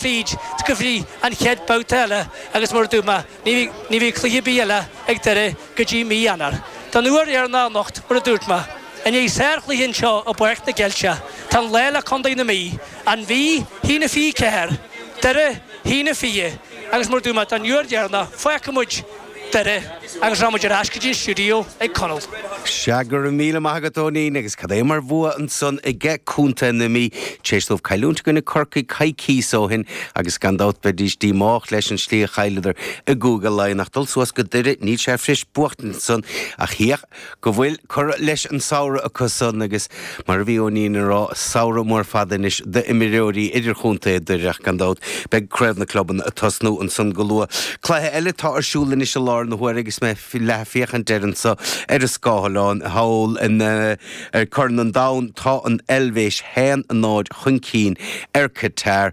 bhíd, go dtí an chéad bhabhta eile agus mar a dúirt mé, ní bheidh cluiche ar bith eile ag Doire go dtí mí Eanáir. Don uair dheireanach anocht, mar a dúirt mé, i ndiaidh sár chluiche anseo i bPáirc na gCeilteach, tá an lá le Condae na Mí, An Mhí, a haon a fiche ceathair, Doire, a haon a fiche, agus mar a dúirt mé, don uair dheireanach, fágfaidh muid, Doire, agus rachaidh muid ar ais go dtí an stiúideo chuig Conall. Seadh, go raibh míle maith agat Eoinín, agus cad é mar bhua ansan aige Contae na Mí, tar éis dóibh cailliúint i gcoinne Corcaigh coicíos ó shin, agus gan dabht bheidís díomách leis an slí a chailleadar i gCúige Laighean, ach dul suas go Doire, níl sé fuirist buachtaint ansan, ach hí a. go bhfuil curtha leis an samhradh acu san agus, mar a bhí Eoinín ag rá, samhradh mór fada anois d'imreoirí idirchontae Dhoire ach gan dabht beidh craobh na clubanna ag tosnú ansan go luath. Cluiche eile atá ar siúl anois i lár na huaire agus mé ag leathfhéachaint air anso ar an scáileán thall ar Chorn an Domhain tá an Eilvéis 1-0 chun cinn ar Qatar.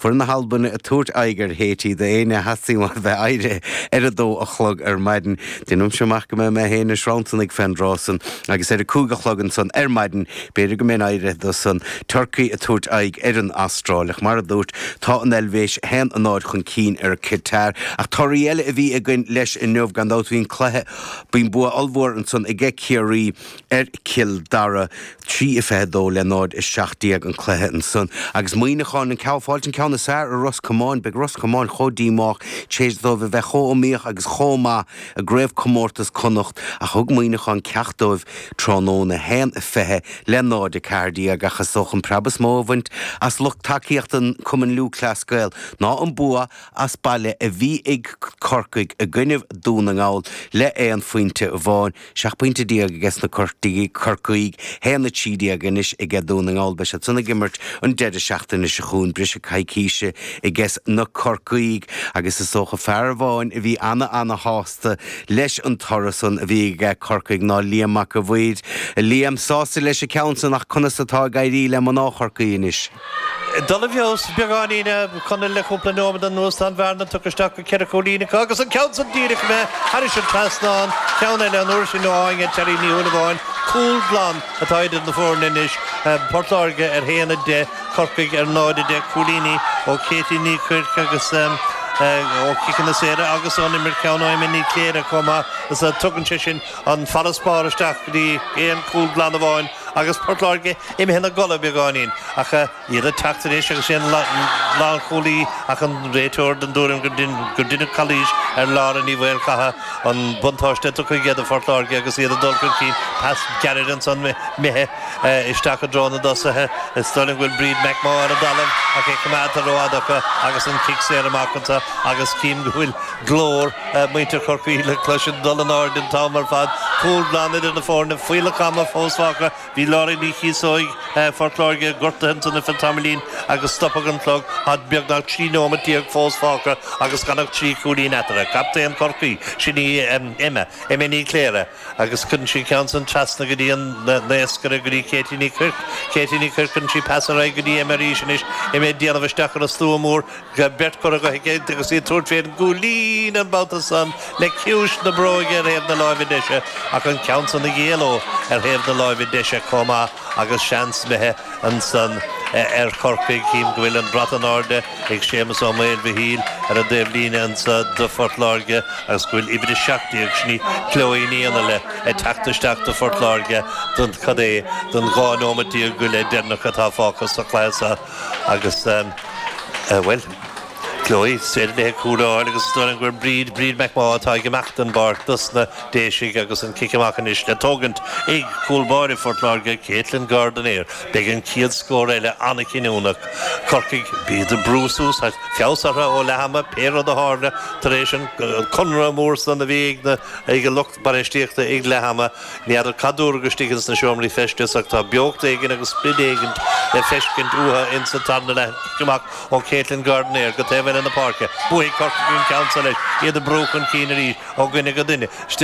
Beidh na hAlbanaigh ag tabhairt aghaidh ar Haiti d'éinne a theastódh uaidh bheith éirithe ar a dó a chlog ar maidin. Deinimse amach go mbeidh mé féin ag sranntarnaigh fén dtráth san agus ar a cúig a chlog ansan ar maidin b'fhéidir go mbeinn éirithe dó san an Tuirc ag tabhairt aghaidh ar an Astráil. Ach mar a dúirt, tá an Eilvéis 1-0 chun cinn ar Qatar. Ach torthaí eile a bhí againn leis inniu gan dabht. Bhí an cluiche, bhí an bua ollmhór ansan aige Ciarraí. ar Chill Dara, 3-22 le 0-17 an cluiche ansan, agus Muíneacháin ag fáil an ceann is fearr ar Ros Comáin. Beidh Ros Comáin chomh díomách téis dóibh a bheith chomh iomaíoch agus chomh maith i gCraobh Comórtas Connacht thug Muíneacháin ceacht dóibh tráthnóna, 1-20 le 0-14 ach is dócha an preab is mó a baineadh as lucht tacaíochta Cumann Lúthchleas Gael ná an bua as baile a bhí ag Corcaigh i gcoinnibh Dún na nGall le aon phointe amháin. 17 pointe aige sna Cor, Corcaígh, 1-13 anois aige Dún na nGall, beidh siad san ag imirt an deireadh seachtaine seo chugainn, briseadh coicíse aiges na Corcaígh agus is dócha fear amháin a bhí ana-ana-shásta leis an toradh san a bhí aige Corcaigh ná Liam Mac a' Mhaoir. A Liam sásta leis an gceann san ach conas atá ag éirí le mná Chorcaí anois? Dul i bhfeabhas beagáinín. Conall le cúpla nóiméad anuas, tá an bhearna tugtha isteach go ceithre chúilín acu agus an ceann san díreach imithe thairis an trasnán, ceann eile an uair sin ó Áine Terry Ní Shúilleabháin. Cúl glan atá idir na foirne anois, Port Láirge ar haon a deich, Corcaigh ar náid a deich, cúilíní ó Katie Ní Choirc ó chiceanna saora agus ón imirt ceann ó Emma Ní Chléirigh chomh maith so tugann sé sin an farasbarr isteach go dtí aon chúl glan amháin. agus Port Láirge imithe ina gcodladh beagáinín, ach iad ag teacht anois agus sin é an lánchúlaí ach an réiteoir den dtuairim gur deineadh calaois ar Lára Ní Mhaolchatha, an buntáiste tugtha aige do Phort Láirge agus iad ag dul chun cinn. Pas gairid ansan imithe isteach i dtreo na dtosaithe. Is dóigh liom go bhfuil Bríd McMaugh ar an dtalamh ach é coimeádta ró-fhada acu agus an cic saor amach anso agus cím go bhfuil glór muintir Chorcaí le cloisint ag dul in airde an t-am ar fad, cúl glan idir na foirne, fuílleach ama fós fágtha, bhí Laura Ní Chíosóig Phort Láirge gortaithe ansan ar feadh tamaillín agus stopadh an clog, tá beagnach trí neomat déag fós fágtha agus gan ach trí chúilín eatarthu, captaen Chorcaí, sin í Emma, Emma Ní Chléirigh agus cuireann sí an ceann san trasna go dtí an t-aon scairt, go dtí Katie Ní Chuirc, Katie Ní Chuirc cuireann sí pas ar aghaidh go dtí Emma arís anois, Emma ag déanamh isteach ar an slua mór, Bhí beirt curtha i gcrích aici agus í ag tabhairt fén gcúl líne an babhta san le ciumhais na bróige ar thaobh na láimhe deise ach an ceann san ag éaló ar thaobh na láimhe deise comh maith agus seans imithe ansan ar Chorcaigh. Chím go bhfuil an brat in airde ag Séamus Ó Maoilmhichíl ar an dtaobh líne ansa do Phort Láirge agus go bhfuil uimhir a seacht déag sin í Chloe Ní Fhionnghaile ag teacht isteach do Phort Láirge don cad é don dhá nóimeat déag go leith deireanach atá fágtha sa chluiche seo. Agus bhuel, Chloe, is féidir léi cúl a fháil agus is dóigh liom go bhfuil Bríd, Bríd McMaugh, atá ag imeacht den bpáirc dos na Déisigh agus an cic amach anois le tógaint ag cúl báire Phort Láirge, Katelyn Gardiner, beidh an céad scór eile an-chinniúnach. Corcaigh, bíd ag brú suas ach feabhas orthu ó leath ama, pé rud a tharla tar éis an comhrá mór san a bhí ag an lucht. bainistíochta ag leath ama. Ní fheadar cad dúradh istigh ins na seomraí feistis, ach tá beocht éigin agus sprid éigin le feiscint uathu ins an tarna leath cic amach ó Katelyn Gardiner go taobh eile na páirce. Buafaidh Corcaigh an ceann seo leis, iad ag brú chun cinn arís ó dhuine go duine.